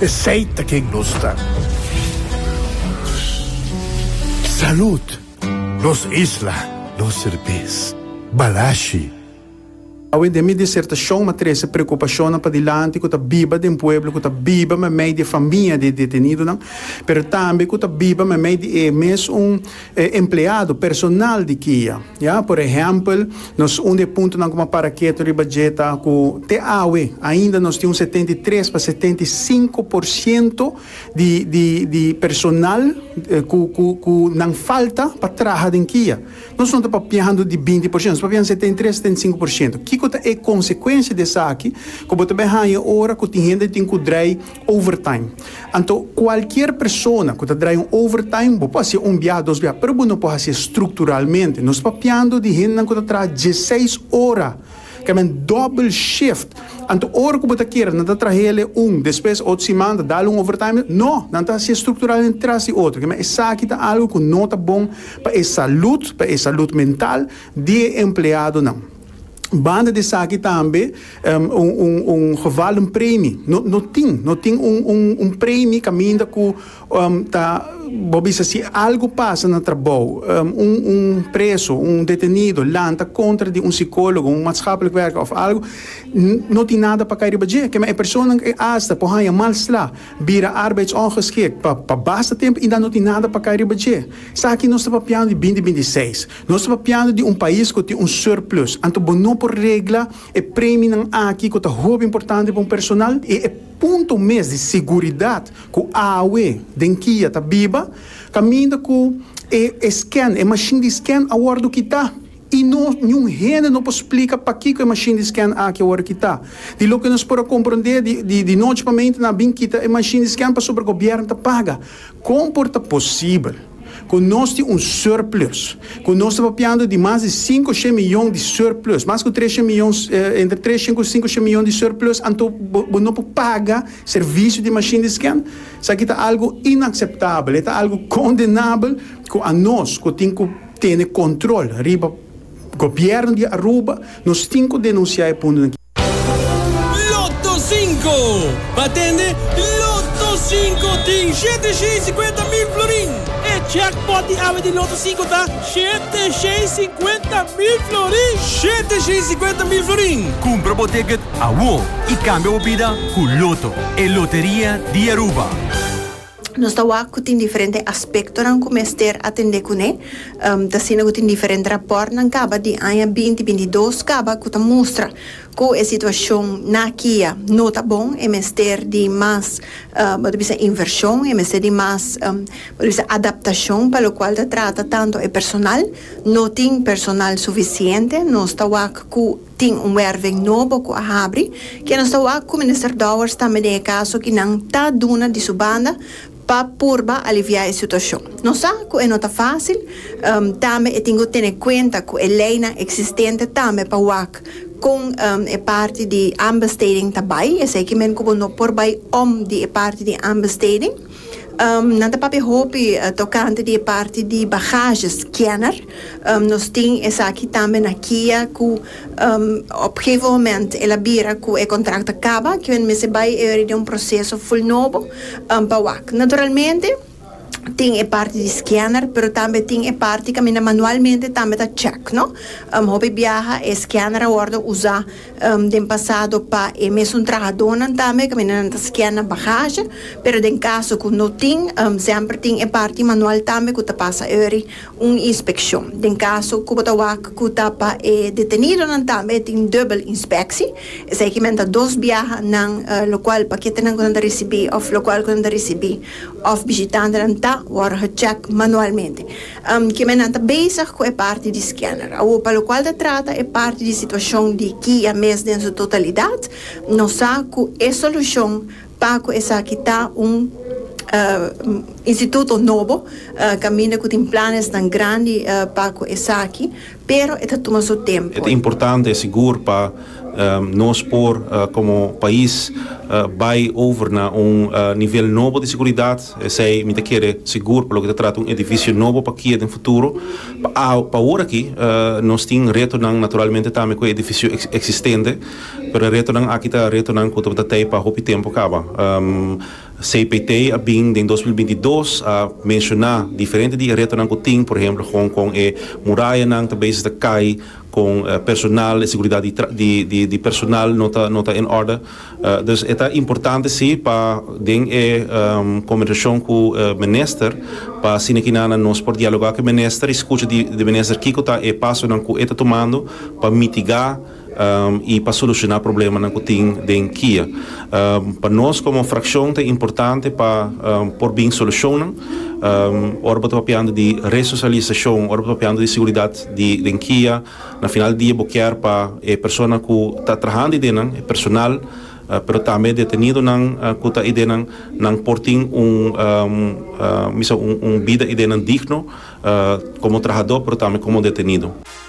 Esey ta ken nos ta. Salud! Nos isla, nos serbes. Balashi. Awe den mi disertashon m'a trese preokupashonnan padilanti ku ta biba den pueblo ku ta biba meimei di e famia di e detenidonan, pero tambe ku ta biba meimei di e mes un E empleado, personal di kia, ya. Por ehèmpel, nos un di e puntonan ku mi a para ketu riba dje ta ku te awe ainda nos tin un setenta i tres pa setenta i sinku por siento di di di personal ku ku ku nan falta pa traha den kia. Nos no ta papiando di binti por siento, nos ta papiando setenta i tres, setenta i sinku por siento. Kiko ta e konsekuensia di esaki ku bo ta bai haña ora ku tin hende tin ku drei Overtime. Anto cualkier persona cu ta draai un overtime, bo por hacié un biaha, dos biaha, pero bo no por hacié structuralmente. Nos papiando di hendenan cu ta traha dieseis ora, ca men double shift. Anto ora cu bo ta kere, nan ta traha hele un, despues otro siman ta dal un overtime? No! Nan ta hacié structuralmente tras di otro. Kema esaki ta algo cu no ta bon pa e salud, pa e salud mental di e empleadonan. Banda di esaki tambe un geval un premi no tin, no tin un premi caminda cu ta bo bisa si algo pasa na trabou un preso, un detenido lanta contra di un psicologo, un maatschapelijk werker of algo no tin nada pa kai riba dje kema e persona asta por haya mal sla, bira arbeidsongeschikt pa basta tempo y dan no tin nada pa kai riba dje. Esaki nos ta papiando di binti binti seis. Nos ta papiando di un pais ku tin un surplus, anto bo no por regla e preminan aki ku ta hopi importante pa un personal i e punto mes di seguridat ku awe den kia ta biba kaminda ku e e scan, e mashin di scan a wòrdu kitá i no niun hende no por splika pakiko e mashin di scan aki a wòrdu kitá. Di loke nos por a komprondé di di di nochi pamenti nan a bin kita e mashin di scan pasobra gobièrnu ta paga. Kon por ta posibel? ku nos tin un surplus, ku nos ta papiando di mas di sinku shen miyon di surplus, mas ku tres shen miyon, entre tres shen ku sinku shen miyon di surplus, anto bo bo no por paga servisio di mashin di sken? Esaki ta algu inakseptabel, e ta algu kondenabel ku anos ku tin ku tene kontrol riba. Gobierno di Aruba, nos tin cu denuncia e punto aki. Lotto Cinco! Bo a tende, Lotto Cinco tin shete shei cincuenta mil florin! E jackpot di awe di Lotto Cinco ta shete shei cincuenta mil florin! Shete shei cincuenta mil florin! Cumpra bo ticket awor y cambia bo bida cu Lotto, e loteria di Aruba! Nos ta wak ku tin diferente aspektonan ku mester atendé kuné. Ta asina ku tin diferente rapòrtnan kaba di aña binti binti dos kaba ku ta mustra ku e situashon na kia no ta bon, e mester di mas bo ta bisa invershon, e mester di mas bo ta bisa adaptashon pa lokual ta trata tantu e personal, no tin personal sufisiente, nos ta wak ku. Tin un werven nobo ku a habri, ke nos ta wak ku Minister Dowers tambe den e kaso ki nan ta duna di su banda pa purba aliviá e situashon. Nos sa ku e no ta fásil, tambe e tin ku tene kuenta ku e leinan eksistente tambe pa wak kon e parti di aanbesteding ta bai, esei ki men ku bo no por bai om di e parti di aanbesteding. Nan ta papia hopi tokante di e parti di bahaje scanner. Nos tin esaki tambe na Kia cu op gegeven moment el a bira cu e contract ta caba, kico nan mester bay e ori den un proceso full nobo pa wak. Naturalmente tin e parti di scanner pero tambe tin e parti caminda manualmente tambe ta check, no. Hopi biaha e scanner a wordo uza Den pasado pa e mesun trahadonan tambe caminda nan ta skia na bagaje, pero den caso cu no tin, semper tin e parti manual tambe cu ta pasa eri un inspeccion. Den caso cu bo ta wak cu ta pa e detenidonan tambe e tin dubbel inspectie, esey ki men ta dos biaha nan locual paketenan cu nan ta ricibi of locual cu nan ta ricibi of bishitantenan ta worde gecheck manualmente. Kimena ta bezig ku e parti di scanner. Awor pa lokual ta trata e parti di situashon di kia mes den su totalidat, nos sa ku e solushon pa ku esaki ta un instituto nobo kaminda ku tin planesnan grandi pa ku esaki Pero e ta tuma su tempu. E ta importante sigur pa nos por komo pais bai over na un nivel nobo di seguridat, esei mi ta kere sigur pa loke ta trata un edifisio nobo pa kia den futuro. Pa ora aki nos tin retonan naturalmente tambe ku e edifisio eksistente, pero e retonan aki ta retonan ku tabata tei pa hopi tempu kaba. CPT a bin den dos mil binti i dos a menshoná diferente di e retonan ku tin, por ehemplo kon kon e murayanan ta beses ta kai, kon personal, e seguridat di tra di di di personal no ta no ta en òrda. Dus e ta importante si pa den e kombersashon ku e minister pa asina kinanan nos por dialogá ku e minister i skucha di di e minister kiko ta e pasonan ku e ta tumando pa mitigá. i pa solucioná problemanan cu tin den kia. Pa nos como fraccion ta importante pa por bin solucionnan ora bo ta papiando di resocialisacion, ora bo ta papiando di seguridad di den kia, na final di dia bo kier pa e persona cu ta trahando id'e nan, e personal, pero tambe e detenidonan cu ta id'e nan, nan por tin un bisa un bida id'e nan digno como trahador pero tambe como detenido.